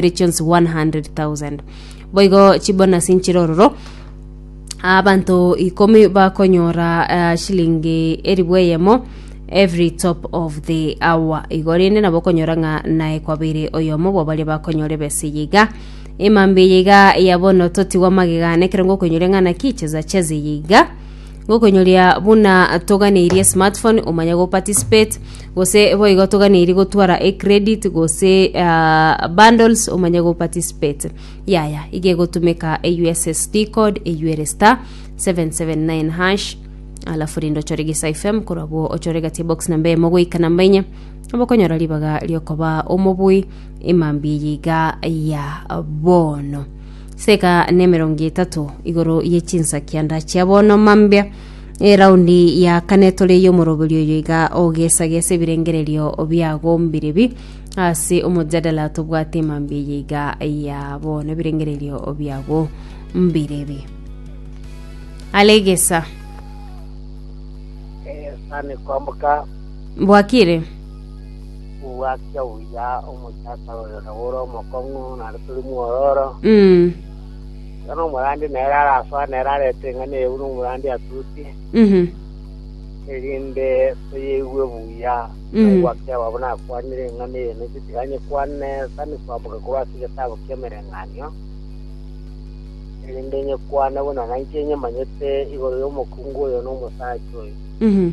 regions 100,000 boigo chibonasi nchirororo abanto ikomi bakonyora uh, shilingi eribu eyemo every top of the hour igo rende nabo okonyora ng'a naye kwabere oyomo bwabaria bakonyora ebesa eye iga emambe eye iga ya bono totigwa magega nekerongo okoinyore ng'a naki cheza cheza eye iga Gokonyoria buna toganeirie smartphone omanye go participate gose boigo toganeirie gotwara e credit gose ah, bundles omanye go participate yaya iga egotumeka e ussd code eyuere star 779 hash alafu rinde ochore gisa fm korabwo ochore gati box namba emo goika namba enye obokonyora ribaga riokoba omobui emambi yiga ya bono Seka nemerongo etato igoro ye chinsakianda chia bono mambia eraundi ya kane tore y'omoroberi oyo iga ogesagesa ebirengererio biagombire bi ase omojadala tobwate mambia eye iga ya bono ebirengererio biagombire bi alegesa Eh, sani kwamboka bwakire Gwakia buya omochaka oyo nagore omokong'u, naende tore mwororo. Mm. Iga nomorandi nere arasoa, nere arete eng'ana eye buna omorandi atutie, Mhm. erinde toyeigue buya. Mm. Nabo gwakia ababo nakwanire eng'ana eye, nainche tiga nyekwane sani koamboka korwa ase egetabu ki'emereng'anio, erinde nyekwane buna nainche nyemanyete igoro y'omokungu oyo na omosacha oyo. Mhm.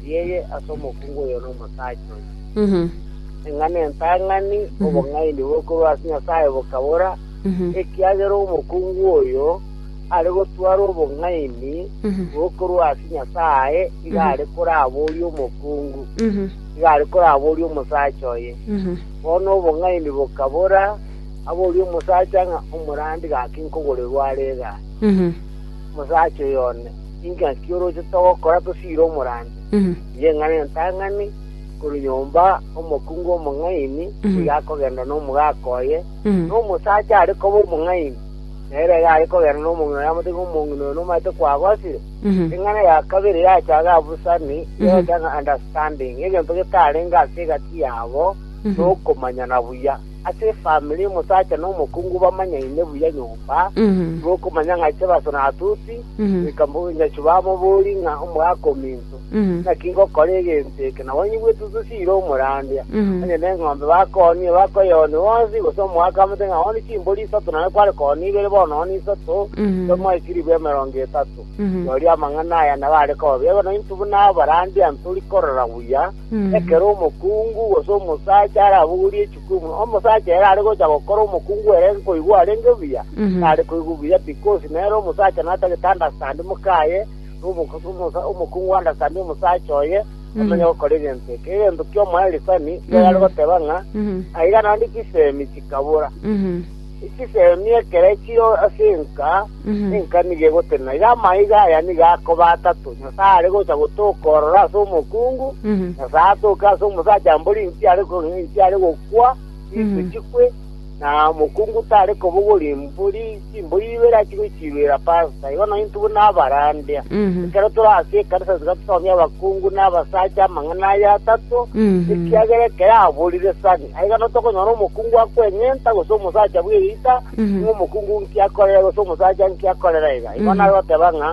Rieye ase omokungu oyo na omosacha oyo. Eng'ana entang'ani, obong'aini bokorwa ase Nyasae bokabora, ekiagera omokungu oyo are gotwara obong'aini bokorwa ase Nyasae iga are koraboria omokungu, iga are koraboria omosacha oye. Bono obong'aini bokabora, aborie omosacha ng'a omorandi gaki nkogorerwa are egaa? Omosacha oyo one. Inki naki orochete ogokora tosiire omorandia? Inche ng'ane entang'ani, korwa nyomba omokungu omong'aini nigo akogenda nomogaka oye, na omosacha are koba omong'aini, na ere iga are kogenda nomong'ina oye amotebie ng'a omong'ina oyo nomanyete kwagosire. Eng'ana ya kabere yachaga abusani, yeta ng'a understanding, egento getarenge ase egati yabo nokomanyana buya. ase efamiri y'omosacha na omokungu bamanyaine buya nyomba, nigo okomanya ng'a inche Baso na Atuti, goika mbogonyachi bamobori ng'a omogaka ominto, naki ngokora egento eke, na banyigwete otosiire omorandia, onye neng'ombe bakoonire bakoyeonia bonsi, gose omogaka amate ng'a ooni chimbori isato nare kware koonia ibere bono ooni isato, tomoe chilifu emerongo etato. Rirorio amang'ana aya nabo are koba bia bono intwe buna abarandia ntori korora buya, Ekero omokungu, gose omosacha, arabogorie chikumu, omosacha ere are gocha gokora omokungu ere nkoigwa arenge buya, Mhm. tare koigwa buya because nere omosacha natagete understand mokaye, na omokusu- omosa- omokungu understand omosacha oye, amenye gokora egento eke. Egento ki'omoelisani, nigo yare goteba ng'a, Mhm. aiga naende chisemi chikabora. Mhm. Echiseemi ekero chire ase enka, enka nigo egotenena. Iga amaiga aya nigo akoba atato, Nyasae are gocha gotoka ororo ase omokungu, Nyasae atoke ase omosacha mbori inki are kong'ina inki are gokwa, chintwe chikwe, na omokungu tare kobogoria mbori chimbori ibere achie gochiruera pasta. Igo nonye intwe buna abarandia, ekero tore ase ekanisa tiga tosomie abakungu na abasacha amang'ana aya atato, ekiagera ekero aborire sani. Na igana tokonyora omokungu akweng'enta, gose omosacha bw'eriita, ng'a omokungu nki akorera, gose omosacha nki akorera iga. Igo nagoteba ng'a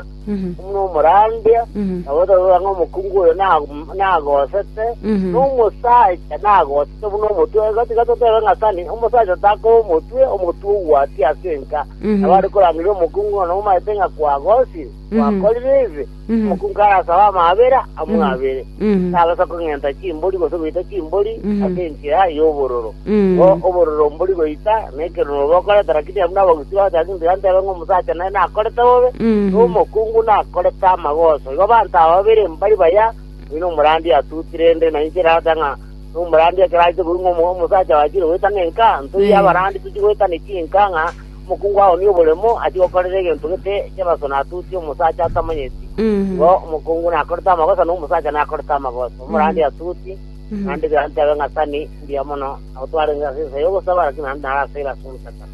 buna omorandia, nabo togokora ng'a omokungu oyo na- nagosete, na omosacha nagosete buna omotwe. Igo tiga totebe ng'a sani omosacha takoba omotwe, omotwe ogwatia ase enka. Nabo are korangeria omokungu ng'a nomaete ng'a kwagosire, gwakorire ebe. Omokungu arasabe amaabera amwabere, tabasa kong'enta chimbori gose goita chimbori ase enchera y'obororo. Bo obororo mbori goita, na ekerono bokoreta, lakini abwo nabagusi ba Gachake ntiga ntebe ng'a omosacha nere nakorete bobe, na omokungu nakorete amagoso. Igo abanto aba babere mbari baya, oyio nomorandia atutire, rende na inche erata ng'a nomorandia ekero aite koigwa ng'a omo- omosacha bachire goeta ng'enka, ntoiyo abarandi tochi goeta ne chinka ng'a Omokungu ao noboremo achie gokorera egento gete kibaso natutie omosacha atamanyeti, igo omokungu nakorete amagosa na omosacha nakorete amagosa, omorandi atuti, naende bianto biabe ng'asani mbuya mono, nabo twarenge ase ensa y'ogosaba, lakini naende naro ase eraso y'ogochakana.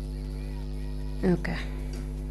Okay.